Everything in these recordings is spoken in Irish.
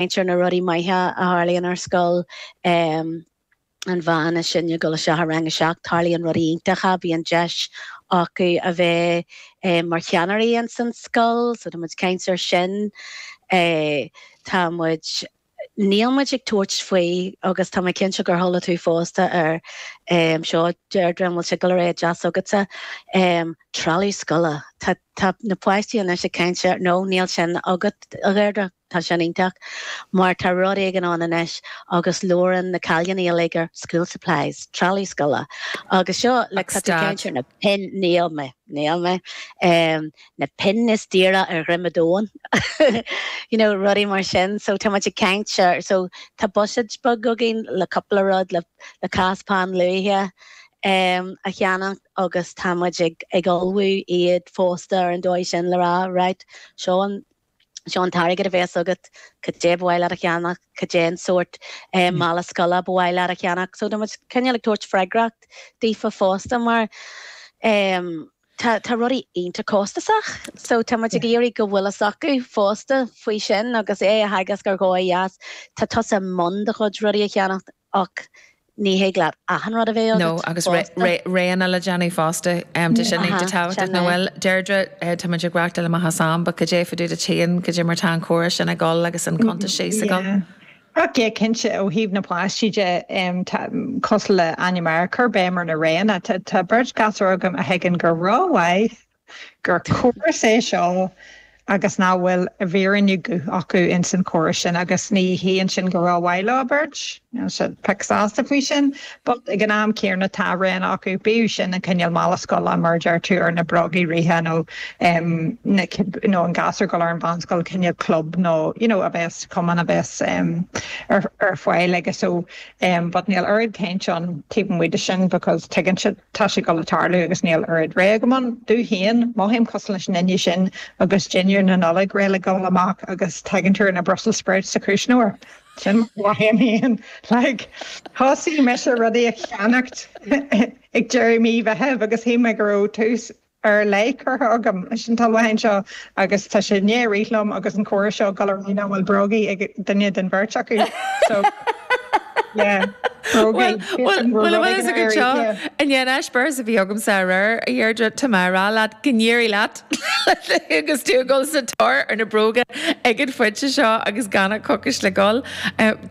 Ceann de na rudaí maithe a tharlaíonn ar scoil an bhean is sine ag dul isteach i rang a seacht, tarlaíonn rudaí iontacha, bíonn deis acu a bheith mar cheannairí ins an scoil, so tá muid ag caint ar sin, tá muid, níl muid ag tabhairt faoi agus tá mé cinnte gur chuala tú fosta ar seo Deirdre, an bhfuil sé, go le ré deas agatsa, trealamh scoile, tá na páistí anois ag caint ar, no níl sin agat a Dheirdre? Tá sin iontach, mar tá rud éigin ann anois agus labhrann na cailíní uilig ar school supplies, trealamh scoile, agus seo, like, Ach tá tú ag stad. caint ar na pinn, níl mé, níl mé, em, na pinn is daora ar dhroim an domhain, you know, rudaí mar sin, so tá muid ag caint ar, so tá buiséad beag againn le cúpla rud, le, le cás peann luaidhe, em, a cheannacht agus tá muid ag, ag ullmhú iad fosta ar an dóigh sin le rá, right, seo an, Seo an t-airgead a bhéas agat, cad é ba mhaith leat a cheannach, cad é an sórt mála scoile ba mhaith leat a cheannach. So tá muid cineál ag tabhairt freagracht daofa fosta mar tá rudaí iontach costasach so tá muid ag iarraidh go bhfuil a fhios acu fosta faoi sin agus é a theagasc ar dhóigh dheas, tá tusa i mbun do chuid rudaí a cheannacht Ach ní thig leat achan rud a bheith No, agat agus fosta. roghanna le déanamh fosta. Tá sé Aha, tábhachtach, sin nach é. bhfuil? Deirdre, tá muid ag reáchtáil amach as am, but cad é fá dtaobh duit féin cad é mar tá an córas sin ag dul agus an cuntas síos ag dul. Ach yeah, cinnte, ó thaobh na bpáistí de, tá, cosúil le Áine muid ag cur béim ar na roghanna. Tá beirt ghasúr agam a thuigeann go rómhaith gur córas é seo agus nach bhfuil i bhfírinne guth acu ins an chóras sin agus ní hionann sin gur mhaith leo beirt, níl siad pioc sásta faoi sin, but ag an am céanna tá roghanna acu, bíodh sin an cineál mála scoile mar a deir tú ar na brógaí reatha nó na nó an gasúr ag dul ar an mheánscoil cineál club nó you know a bheas cumann a bheas ar fáil aige so but níl oiread caint ann taobh amuigh de sin because tuigeann siad Tá sé ag dul a tharlú agus níl oiread rogha agam ann. Domh féin, mothaím cosúil leis an duine sin agus dinnéar na Nollag réidh le dhul amach agus tagann tú ar na brussels sprouts sa chuisneoir. Sin mar a mhothaím féin. Like, thosaigh mise rudaí a cheannacht ag deireadh mí Mheithimh agus shíl mé go raibh tús ar leith curtha agam leis an t-ullmhúchán seo agus tá sé i ndiaidh rith liom agus an comhrá seo ag dul ar aghaidh nach bhfuil brógaí ag duine den bheirt acu so yeah brógaí bhfuil bhfuil a fhios agat so i ndiaidh an eispéireas a bhí agamsa aréir a Dheirdre tá mé ag rá leat go n-éirí leat agus tú ag dul sa tóir ar na bróga ag an phointe seo agus gan ach coicís le dhul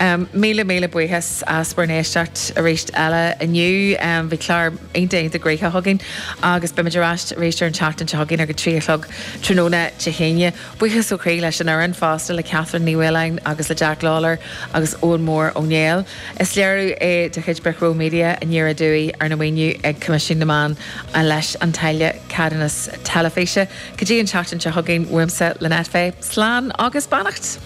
Míle míle buíochas as bhur n-éisteacht arís eile inniu. Bhí clár iontach iontach gnoitheach againn agus beimid ar ais arís ar an tseachtain seo chugainn ar a trí a chlog tráthnóna Dé hAoine. Buíochas ó chroí leis an fhoireann fosta, le Catherine Ní Mhaoláin agus le Jack Lawlor agus Eoin Mór Ó Néill. Is léiriú é de chuid Brick Row Media a ndíreoidh dúigh arna mhaoiniú ag Coimisiún na Meán leis an táille ceadúnais teilifíse. Go dtí an tseachtain seo chugainn, uaimse, Lynette Fay, slán agus beannacht!